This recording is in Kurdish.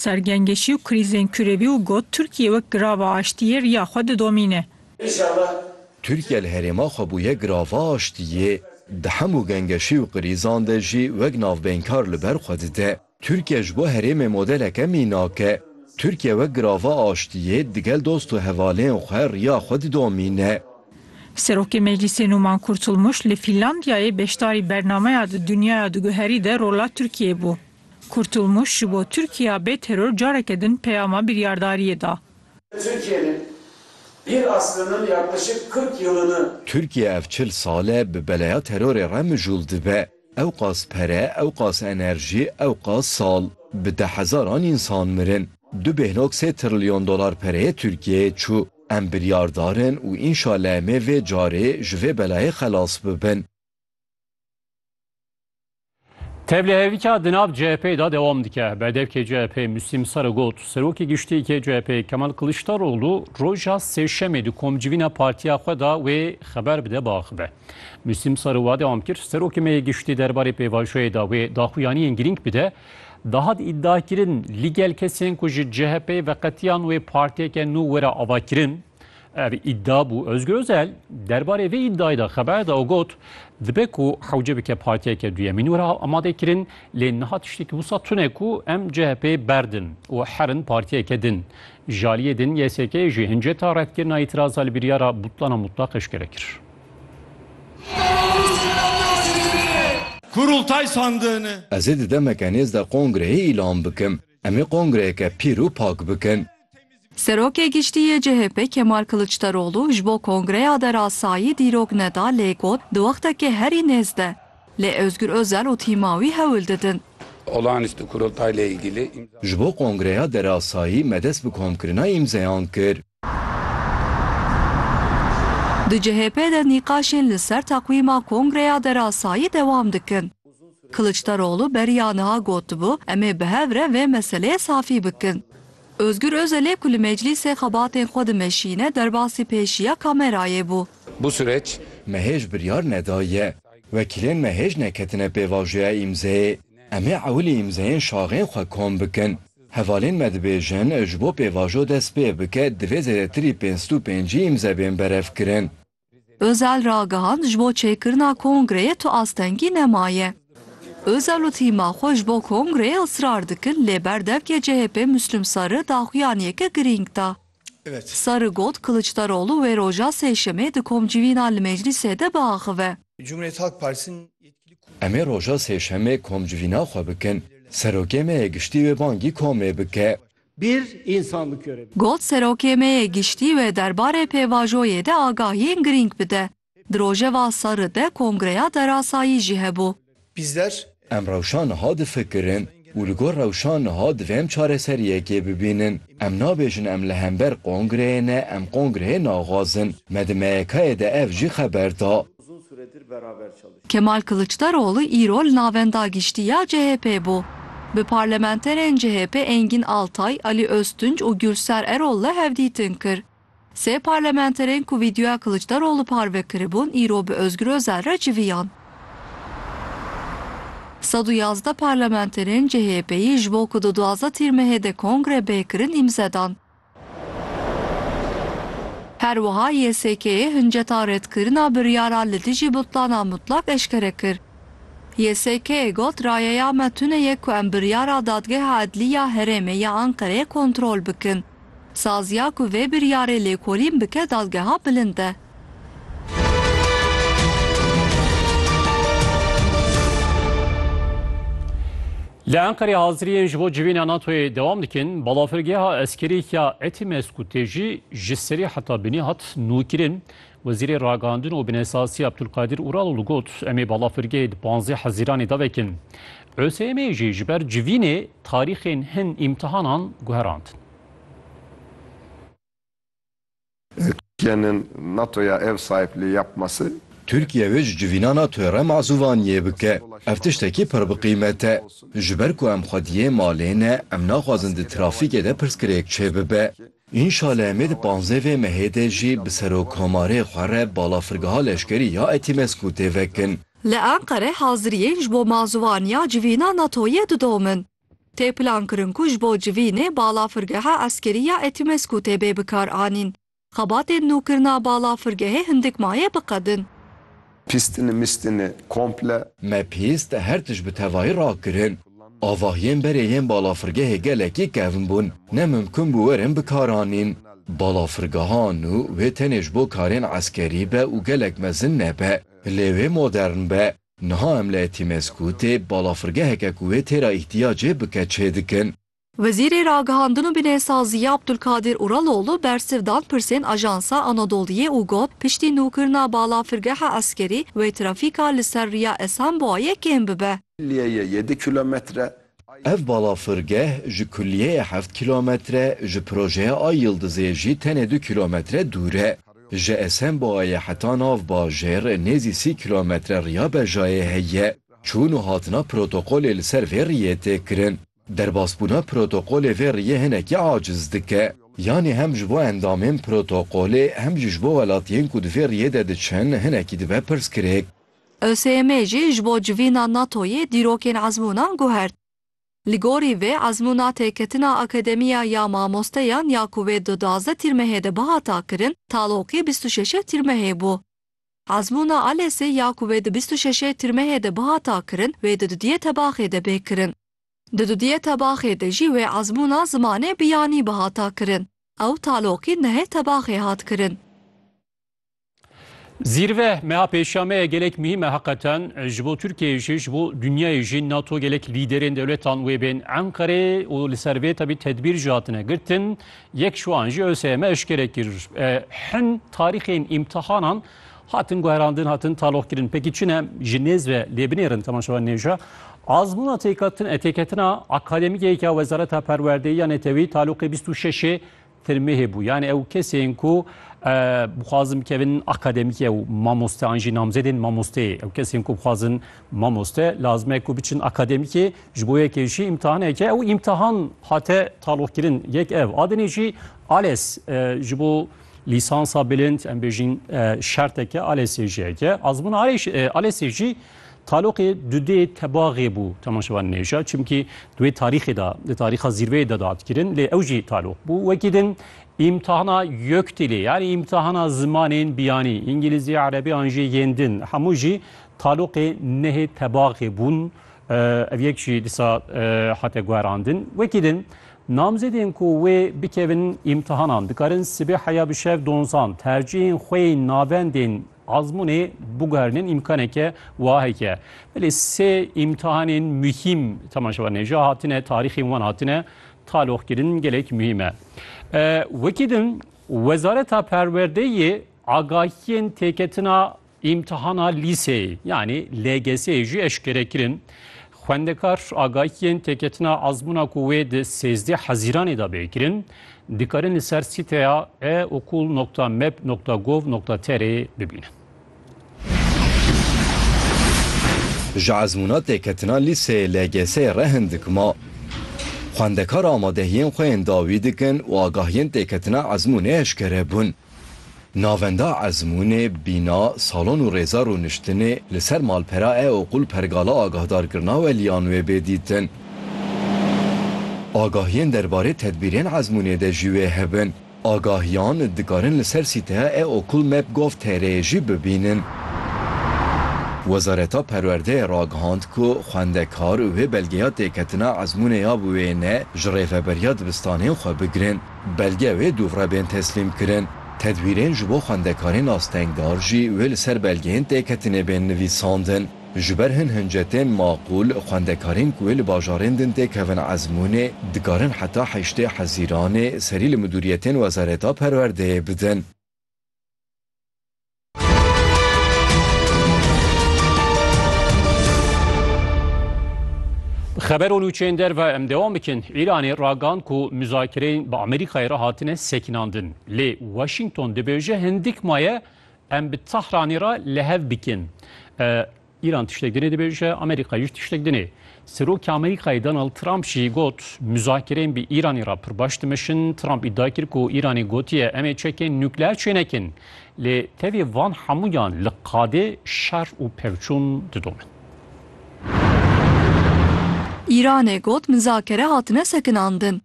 Ser gengeşî û krîzên kurevî û got, Tirkiye wek girava aştiyê riya xwe didomîne. Tirkiye li herêma xwe bûye girava aştiyê, di hemû gengeşî û krîzan de jî wek navbeynkar li ber xwe dide. Tirkiye ji bo herêmê modeleke mînak e. Tirkiye wek girava aştiyê digel dost û hevalên xwe riya xwe didomîne. Serokê Meclîsê Nûman Kurtulmuş li Fînlandiyayê beşdarî bernameya Di Dunyaya Diguherî de rola Tirkiyeyê bû. Kurtulmuş ji bo Tirkiya bê teror careke din peyama biryardariyê da. Tirkiyenin bir aslının yaklaşık kırk yılını. Tirkiye ev çil sal e bi beleya terorê re mijul dibe. Ewqas pere, ewqas enerji, ewqas sal. Bi de hezaran insan mirin. Du bêhnok sê trilyon dolar pereyê Tirkiyeyê çu. Em biryardar in û inşale em ê vê carê ji vê belayê xelas bibin. Tevlihevîka di nav CHP'ê de dewam dike. Berdevkê CHP'ê Müslim Sarı got, Serokê Giştîyekê CHP'ê Kemal Kılıçdaroğlu roja Sêşemê di komcivîna partiya xwe de wê xeber bide biaxive. Müslim Sarı wa dewam kir, Serokê me yê Giştî derbarê pêvajoyê de wê daxuyaniyên girîng bide. Dihat îdiakirin ligel kesên ku ji CHP'ê veqetiyan wê partiyeke nû were avakirin. Ev îdia bû Ozgur Ozel derbarê vê îdiayê de xeber da û got, Dibe ku hewce bike partiyeke duyemîn wiha amade kirin lê niha tiştekî wisa tune ku em CHP'ê berdin û herin partiyeke din. Ji aliyê din YSK'ê jî hinceta redkirina îtiraza li biryara butlana mutlaq eşkere kir. Kurultay sandığını. Ez ê di demeke nêz de kongreyê îlan bikim. Em ê kongreyeke pîr û pak bikin. Serokê Giştî yê CHP'ê Kemal Kiliçdaroglu ji bo kongreya derasayî dîrok neda lê got di wextekê herî nêz de lê Ozgur Ozel û tîma wî hewl didin. Ji bo kongreya derasayî me dest bi komkirina îmzeyan kir. Di CHP de nîqaşên li ser teqwîma Kongreya Derasayî dewam dikin. Kiliçdaroglu beriya niha gotibû, Em ê bi hev re vê meseleyê safî bikin. Ozgur Ozelê ku li meclîsê xebatên xwe dimeşîne derbasî pêşiya kamerayê bû. Bu sureç me hêj biryar nedaye. Wekîlên me hêj neketine pêvajoya îmzeyê. Em ê ewilî îmzeyên şaxên xwe kom bikin. Hevalên me dibêjin, ji bo pêvajo dest pê bike divê zêdetirî pênc sed û pêncî îmze bên berevkirin. Özel ragihand ji bo çêkirina kongreyê tu astengî nemaye. Özel û tîma xwe ji bo kongreyê israr dikin lê berdevkê CHP'ê Müslüm Sarı daxuyaniyeke girîng da. Sarı got, Kılıçdaroğlu wê roja sêşemê di komcivîna li meclîsê de biaxive. Em ê roja sêşemê komcivîna xwe bikin. Serokê me yê Giştî wê bangî komê bike. Got, Serokê me yê Giştî wê derbarê pêvajoyê de agahiyên girîng bide. Di rojeva serri de kongreya derasayî jî hebû. Bizler. Em rewşa niha difikirin û li gor rewşa niha divê em çareseriyekê bibînin. Em nabêjin em li hember kongreyê ne, em kongreyê naxwazin. Me di MYK'ê de ev jî xeber da. Kemal Kiliçdaroglu îro li Navenda Giştî ya CHP'ê bû. Bi parlamenterên CHP'ê Engîn Altay, Alî Oztunc û Gulser Erol'le hevdîtin kir. Sê parlamenterên ku vîdeoya Kiliçdaroglu parve kiribûn îro bi Ozgur Ozel re civiyan. Sed û yazdeh parlamenterên CHP'yî ji bo ku di duwazdeh tîrmehê de kongre bê kirin îmze dan. Her wiha YSK'ê hinceta redkirina biryara li dijî butlana mutlak eşkere kir. YSK'ê got rayeya me tune ye ku em biryara Dadgeha Edlî ya Herêmê ya Enqereyê kontrol bikin. Saziya ku vê biryarê lêkolîn bike dadgeha bilind e. Li Enqerê haziriyên ji bo civîna NATO'yê dewam dikin. Balafirgeha eskerî ya Etimesku tê jî ji serê heta binê hat nûkirin. Wezîrê Ragihandin û Binesasî Abdulkadir Uraloğlu got, Em ê balafirgehê di panzdeh hezîranê de vekin. Useyemê jî ji ber civînê tarîxên hin îmtihanan guherandin. Tirkiyenin NATOya ev sahipliği yapması. Tirkiye wê ji civîna NATOya re mazûvaniyê bike. Ev tiştekî pir bi qîmet e. Ji ber ku em xwediyê malê ne, em naxwazin di trafîkê de pirsgirêk çêbibe. Înşale em ê di panzdeh vê mehê de jî bi Serokkomarê xwe re balafirgeha leşkerî ya Etimesgû têvekin. Li Enqere haziriyên ji bo mazûvaniya civîna NATO'yê didomin. Tê plankirin ku ji bo civînê balafirgeha eskerî ya Etimesgû tê bê bikaranîn. Xebatên nûkirina balafirgehê hindik maye biqedin. Pîstine mîstine komple. Me pîst her tişt bi tevahî rakirin. Avahiyên berê yên balafirgehê gelekî kevn bûn, ne mimkun bû werin bikaranîn. Balafirgeha nû wê tenê ji bo karên eskerî be û gelek mezin nebe, lê wê modern be. Niha em li Etimesgûtê balafirgeheke ku wê têra îhtiyacê bike çêdikin. Wezîrê Ragihandin û Binêsaziyê Abdulkadir Uraloğlu bersiv dan pirsên Ajansa Anadolu'yê û got, piştî nûkirina balafirgeha eskerî wê trafîka li ser riya Esenboayê kêm bibe. Kulliyeyê yê du kilometre Ay Ev balafirgeh ji kulliyeyê heft kilometre, ji projeya Ay Yıldızê jî tenê du kilometre dûr e. Ji Esenboayê heta nav bajêr nêzî sî kilometre riya bejayê heye. Çûn û hatina protokolê li ser vê riyê tê kirin. Derbasbûna protokolê vê riyê hinekî aciz dike. Yanî hem ji bo endamên protokolê hem jî ji bo welatiyên ku di vê riyê de diçin hinekî dibe pirsgirêk. ÖSYM'ê jî ji bo civîna NATO'yê dîrokên ezmûnan guhert. Li gorî vê ezmûna têketina akademiya ya mamosteyan ya ku wê di duwazdeh Tîrmehê de bihata kirin, taloqî bîst û şeş Tîrmehê bû. Azmûna Alesê ya ku wê di bîst û şeşê Tirmehê de bihata kirin, wê di dudiyê tebaxê de bê kirin. Di dudiyê tebaxê de jî wê azmûna zimanê biyanî bihata kirin. Ew taloqî nehê tebaxê hat kirin. Zîrve meha pêşameye gelek muhîm e heqeten ji bo Tirkiyeyê jî ji bo dinyayê jî nato gelek lîderên dewletan wê bên Enqerê û li ser vê tevî tedbîr jî hatine girtin Yek ji wan jî ÖSYM eşkere kir, Hin tarîxên îmtihanan hatin guherandin, hatin taloqkirin. Pekî çi ne? Ji nêz ve lê binêrin temaşevan nêja. Azmûna têketina akademîkê ya Wezareta Perwerdeyî ya Netewî taloqê bîst û şeşê Tirmehê bû. Yanî ew kesên ku bixwazin bikevin akademîkê û mamoste an jî namzedên mamosteyê. Ew kesên ku bixwazin mamoste lazim e ku biçin akademîkê Ji bo yekê jî îmtihaneke û îmtihan hate taloqkirin. Yek ev a dinê jî ALES ji bo lîsansa bilind em bêjîn şerteke ALESê jî heke. Azmûna ALESê jî taloqê dudê tebaxê bû temaşevan nêja çimkî duê tarîxê de di tarîxa zîrveyê de dadkirin lê ew jî taloq bû. Wekî din îmtihana YÖKDİL'ê yanî îmtihana zimanên biyanî îngîlîzî, erebî an jî yên din hemû jî taloqê nehê tebaxê bûn. Ev yek jî dîsa hate guherandin. Wekî din, namzêdên ku wê bikevin îmtihanan dikarin sibê heya bi şev donzan tercîhên xwe yên navendên ezmûnê biguherînin îmkaneke wiha heke. Belê sê îmtihanên muhîm temaşe wan hêja hatine tarîxên wan hatine taloqkirin gelek muhîm e. Wekî din, Wezareta Perwerdeyê agahiyên têketina Îmtihana lîseyê yanî LGS'ê jî eşkere kirin. Xwendekar agahiyên têketina ezmûna ku wê di sêzdeh hezîranê de bê kirin dikarin li ser sîteya e-okul nokta meb nokta gov nokta trê bibînin. Ji ezmûna têketina lîseyê LGS'ê re hindik ma. Xwendekar amadehiyên xwe yên dawî dikin û agahiyên têketina ezmûnê eşkere bûn. Navenda ezmûnê, bîna, salon û rêza rûniştinê li ser malpera e oqûl pergala agahdarkirina weliyan wê bê dîtin. Agahiyên derbarê tedbîrên ezmûnê de jî wê hebin. Agahiyan dikarin li ser sîteya e oqûl map-gov-tr'ê jî bibînin. Wezareta Perwerdeyê ragihand ku xwendekar wê belgeya têketina ezmûnê ya bi wêne ji rêveberiya dibistanên xwe bigirin. Belge wê dûvre bên teslîmkirin. Tedwîrên ji bo xwendekarên astengdar jî wê li ser belgeyên têketinê bên nivîsandin. Ji ber hin hincetên maqûl, xwendekarên ku wê li bajarên din têkevin ezmûnê, dikarin heta heştê Hezîranê serî li midûriyetên Wezareta Perwerdeyê bidin. Xeber û nûçeyên derve em dewam bikin. Îranê ragan ku muzakireyên bi Amerîkayê re hatine sekinandin. Lê Washington dibêje hindik maye em bi Tahranê re li hev bikin. Îran tiştek dinê dibêje, Amerîka jî tiştek dinê. Serokê Amerîkayê Donald Trump jî got, Muzakereyên bi Îranê re pir baş dimeşin. Trump îdia kir ku Îranê gotiye em ê çekên nukleer çênekin. Lê tevî van hemûyan li qadê şer û pevçûn didomin. Îranê got muzakere hatine sekinandin.